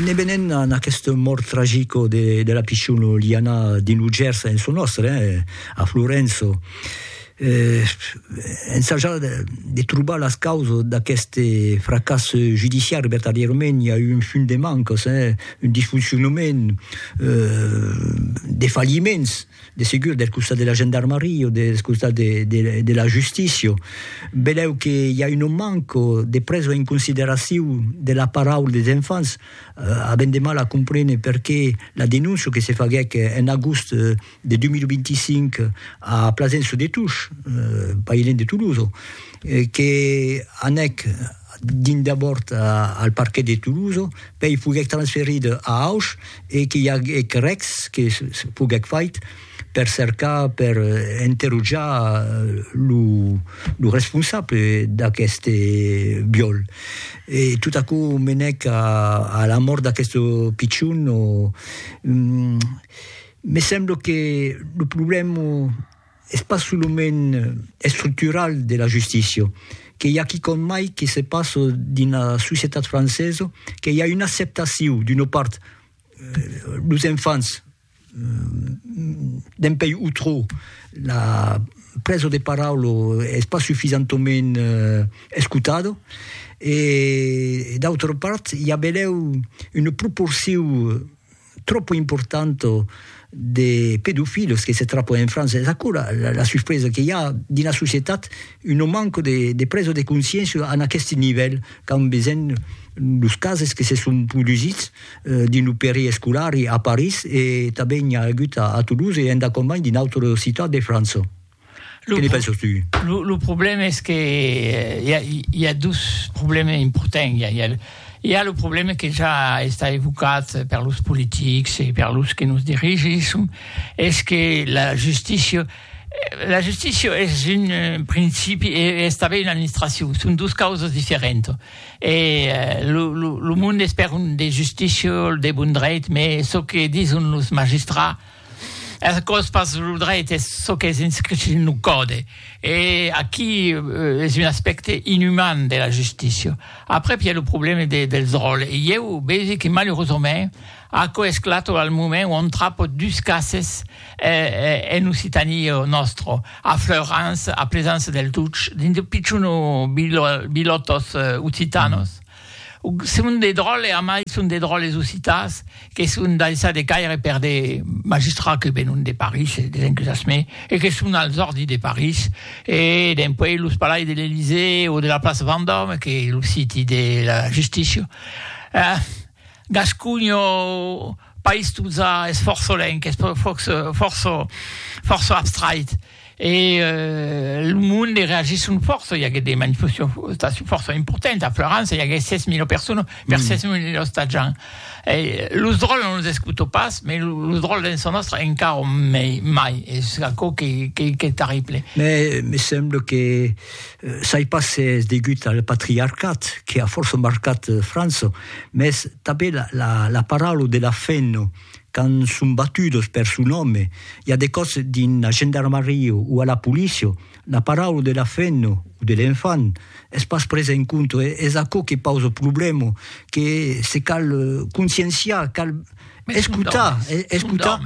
Ne venent a aquesta mòrt tragica de la pichona Liana dins lo Gèrs en çò nòstre, a Florença, ensajar de trobar las causas d'aqueste fracàs judiciari, vertadièrament i a un fum de mancas, un disfoncionament, de falliments. de segur del costat de la gendarmaria o del costat de de de la justícia, velèu que i a una manca de presa en consideracion de la paraula des enfants, avèm de mal a comprene perqué la denóncia que se faguèc en agost de 2025 a Plasencia de Tush, pas ilèn de Tolosa, que anèc dins d'abòrd al parquet de Toulouse, pèi foguèc transferit a Auch e qu'i aguèc rècs que foguèc fait per cercar, per interrojar lo responsable d'aqueste viòl. E tot aquò menèc a la mòrt d'aqueste pichon. Me sembla que lo problèma Es pas solament estructural de la justícia, que i a quicòm mai que se passa dins la societat francesa, que i a una acceptacion d'una part los enfants dempuèi o trò la presa de paraula es pas sufisentament escotada e d'autra part i a benlèu una proporcion tropo importanto de pedofilos que se trapo en França, es aquò la la la suspresa que i a dins la societat una manca de de presa de consciéncia en aqueste nivèl qu'an besenh los cases que se son produsits dins lo peri escolar a París e tanben i a agut a Toulouse e endacòm mai dins d'autres ciutats de França. Lo, que penses tu? Lo, lo problema es que hi ha, hi ha dos problemes importants. Hi ha, hi ha, hi ha lo problema que ja està evocat per los politics e per los que nos dirigissem, es que la justícia la justícia es un eh, principi e es tanben una administracion, son dos causas diferentas. E eh, lo, lo, lo monde es per un de justícia, de bon dreit, mais çò que dison los magistrats Es còs pas lo dreit, es çò qu'es inscrit dins lo còde. E aquí es un aspècte inuman de la justícia. Aprèp i a lo problèma dels ròls. E ieu vegi que malurosament aquò esclata al moment ont trapo dus cases en Occitània nòstra, a Fleurans, a Plesans-se-Deltuch, dins de pichons bilòtos occitanos, Son de dròlles, a mai son de dròlles occitans que son daissats de caire per de magistrats que venon de París e des encusas mai e que son als òrdis de París e dempuèi los palais de l'Elysée o de la plaça Vendòme que es lo siti de la justícia. Gasconha, país totza esforçolenc, esforço, fòrça, fòrça abstrait. E lo monde reagissent fòrça, i aguèt de manifestacions fòrça importantes. A Florança i aguèt 6.000 personas per 6.000 ostatjants. E los dròlles non los escutò pas, mas los dròlles dens sa nòstra encara mai, es aquò qu'es terrible. Mès me sembla que sai pas s'es degut al patriarcat que a fòrça marcat França, mès tanben la paraula de la fin Quand son batudos per son òme, i a de còps dins la gendarmaria o a la polícia, la paraula de la femna o de l'enfant es pas presa en compte. Es aquò que pausa problèma, que se cal conscienciar, cal escotar, escotar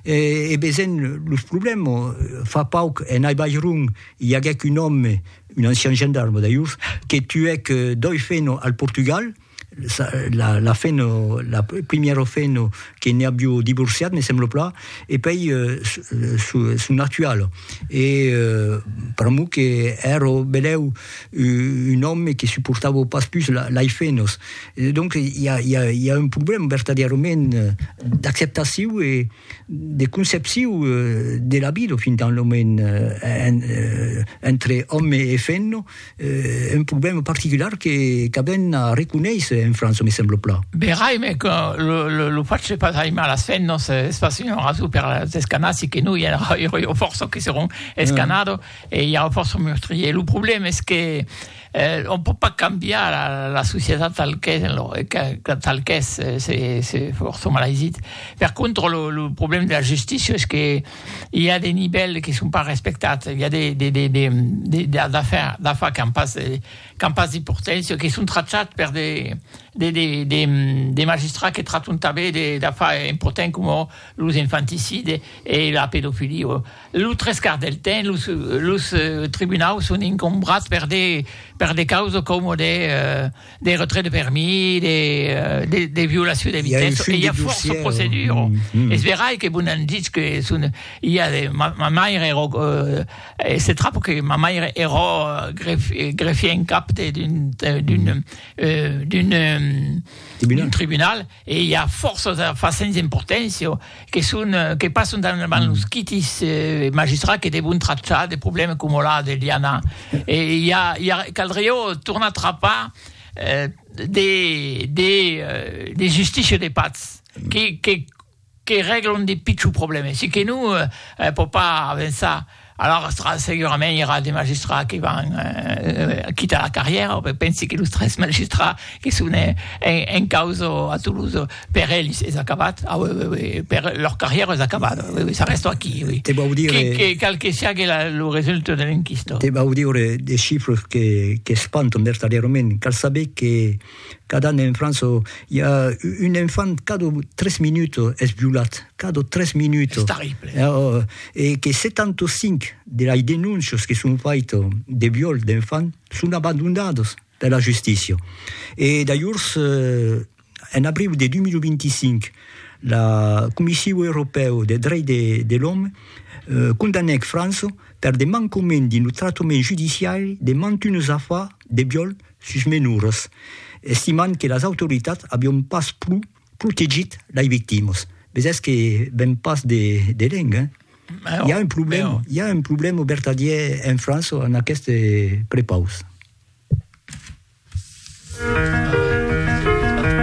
e veisent los problèmas. Fa pauc, en Aibairon, i aguèc un òme, un ancian gendarme d'ailhors, que tuèc doi femnas al Portugal, la, la fin, la primièra fin que ne aviu divorciat, me semblo plan, e pei son actual. E pr'amor que èra benlèu un òme que suportava pas pus lei fenos. Donc i a un problèma vertadièrament d'acceptaciu e. de concepcion de la vida fin tant lo moment entre òme e femna, un problèma particular que qu'avèn a reconéisser en França, me sembla plan. Verai, me que lo lo lo fach de pas aimar las femnas es pas una rason per las escanar, si que non i aurà fòrça que seràn escanado e i aurà fòrça meurtriers. Lo problèma es que On pòt pas cambiar la societat tal qu'es, tal qu'es, se fòrça malaisits. Per contra, lo problèma de la justícia es que i a de nivèls que son pas respectats, i a d'afars qu'an pas d'importància, que son trachats per de magistrats que trachon tanben d'afars importants coma los infanticides e la pedofilia. Lo tres quarts del temps, los, los tribunaus son incombrats per de, per de causes coma de, de retrait de permis, de, de, de violacion de vitessa, e i a fòrça proceduras. Es verai que vos n'an ditz que son, i a de, ma, ma maire èra, se trap que ma maire èra gref, greffier en cap de, d'un, d'un, d'un, d'un tribunal. E i a fòrça d'afars sens importància que son que passan davant los quitis magistrats que devon trachar de problèmas coma la de Liana. E i a i a caldriá tornar trapar de de de justícia de patz que que que règlon de pichons problèmes e que non pòt pas avançar, alòrs segurament i aurà de magistrats que van quitar la carrièra, o pensi que los tres magistrats que son en causa a Toulouse, per ells es acabat, per lor carrièra es acabat, s'arrèstan aquí, qual que siágue lo resultat de l'enquista. Te vau dire de chifres qu'espantan vertadièrament, cal saber que. Cada an en França i a un enfant cada tres minuts es violat, cada tres minuts. Es terrible. E que 75 de las denóncias que son faitas de viol d'enfants son abandonadas per la justícia. E d'alhors, en abriu de 2025, la Comissiu Europèu de Drech de l'Òme condanèc França per de mancament dins lo tractament judiciari de mantunes afars de viol sus menors, estimant que las autoritats avion pas pro protegit lei victimas. Bes es que ven pas de de lènh, hein? Mèu, I'a un problèma, mèu. i'a un problèma vertadièr en França en aqueste prepaus.